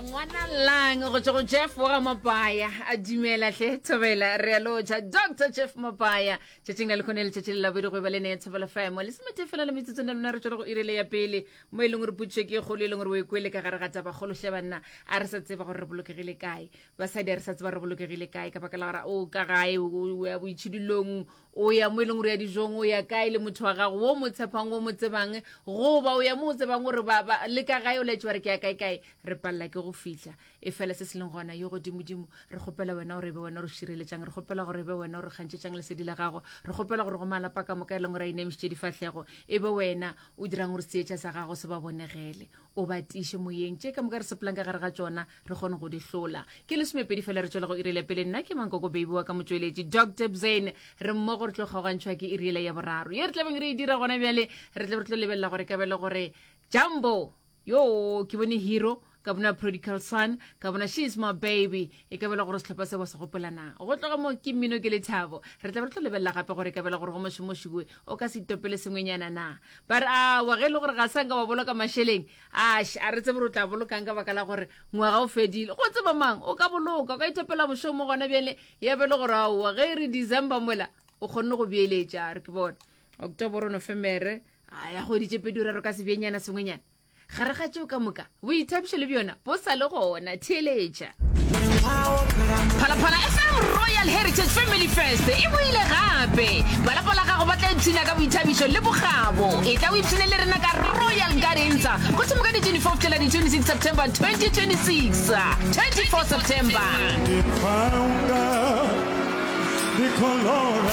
ngwana lang go tswa go jeff wa ga mabaya a dumela hle thobela re a loja dr jeff mabaya tšatšing la lekgone letšatši le labedi go eba le ne thobela fm le semete fela le metsotsong le lona re tswele go irele ya pele mo e leng gore putšo ke kgolo e leng gore o e kwele ka gare ga taba kgolo hle banna a re sa tseba gore re bolokegile kae basadi a re sa tseba re bolokegile kae ka baka la gore o ka gae o ya boitšhidulong o ya mo e leng gore ya dijong o ya kae le motho wa gago wo mo tshepang wo mo tsebang goba o ya mo o tsebang gore le ka gae o laetse wa re ke ya kae kae re palela ke go fitlha e fela se se leng gona yo godimodimo re kgopela wena gore e be wena gore šireletšang re kgopela gore e be wena gore kgantšhetšang lesedi la gago re kgopela gore go malapa ka moka e leng gore a inemišitše difatlhego e be wena o dirang gore seetša sa gago se ba bonegele o ba tiše moyeng tše ka moka re sepelang ka gare ga tšona re kgone go di hlola ke lesomepedi fela re tswela go irile pele nna ke mankoko baby wa ka motsweletši dr bzane re mmogo re tlo kgaogantšhwa ke irile ya boraro ye re tlabeng re e dira gona bjale re tlabe re tlo lebelela gore ka bele gore jumbo yo ke bone hero ka bona prodical son ka bona she is my baby e ka bela gore setlhopha se wa se gopolana go tloga mo ke mmino ke lethabo re tlabe re tlo lebelela gape gore ka bela gore go mošomošiwe o ka se itopele sengwenyana na ba re awa ge e le gore ga sanka wa boloka mašeleng Ash, a re tsebe gore o tla bolokang ka baka la gore ngwaga o fedile. Go tseba mang, o ka boloka, o ka ithopela bošong mo gona bjale, ya be le gore aowa, ge e re December mola, o kgonne go beeletša, a re ke bona. October, Nofemere, a ya kgwedi tše pedi raro ka sebjenyana sengwenyana. Gare ga tšeo ka moka, boithabišo le bjona bo sa le gona, theeletša. phalaphala fm royal heritage family fest e boile gape balapa la gago ba tla ipshina ka boithabišo le bogabo e tla o ipshine le rena ka royal gardensa go thoma ka di-24 fihlela di-26 september 2026 24 september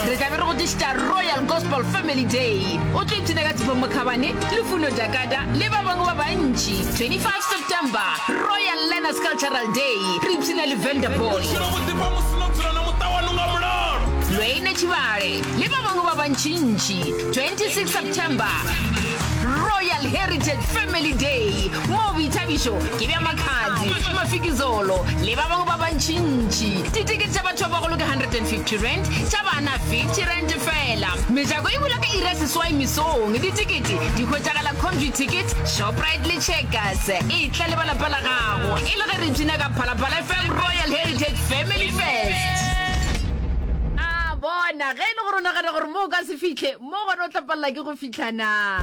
re tlabe re go tlišitša royal gospel family day o tlo ipshina ka tshifo mokhabane lufuno jakada le ba bangwe ba bantši 25 september royal learners cultural day re ipshina le vanderball lweine tšhibale le ba bangwe ba bantšintši 26 september royal heritage family day moo boithabišo ke bja makhadzi mafikizolo le ba bangwe ba bantšintši Ditikete tša batho ba bagolo ke 150 rand, tša bana 50 rand fela. Mejako e bula ka iri ya seswai mesong. Ditikete di hwetšagala Comview Ticket, Shoprite le Checkers. E tla le ba lapa la gago e le ge re ipshina ka Phalaphala FM Royal Heritage Family Fest. A bona, ge e le gore o nagana gore mo o ka se fihle, Mo gona o tla palela ke go fihla na?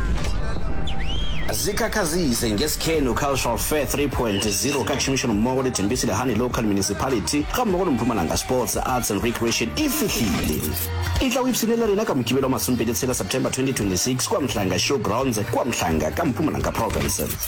Zikhakhazise ngeSikhenu Cultural Fair 3.0 ka tšhomišanommogo le Tembisi Lehane Local Municipality gammogo le Mpumalanga Sports, Arts and Recreation e fihlile. E tla o ipshine le rena ka Mokibelo wa masomepedi tshela September 2026 kua Mhlanga Showgrounds kua Mhlanga ka Mpumalanga Province.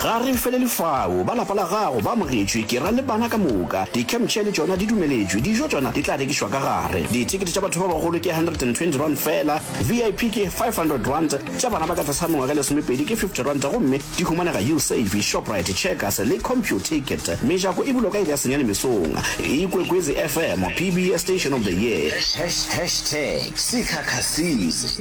Ga re felele fao. Ba lapa la gago ba amogetšwe, ke ra le bana ka moka. Di-campchair le tšona di dumeletšwe. Dijo tšona di tla rekišwa ka gare. Dithekete tša batho ba bagolo ke R120 feela, VIP ke R500, tša bana ba ka tlase ga mengwaga e lesomepedi ke R50 gomme di humanega Usave, Shoprite, Checkers le Computicket. Mejako e bulwa ka iri ya senyane mesong. Ikwekwezi FM, PBS Station of the Year. Hashtag Sikhakhasini.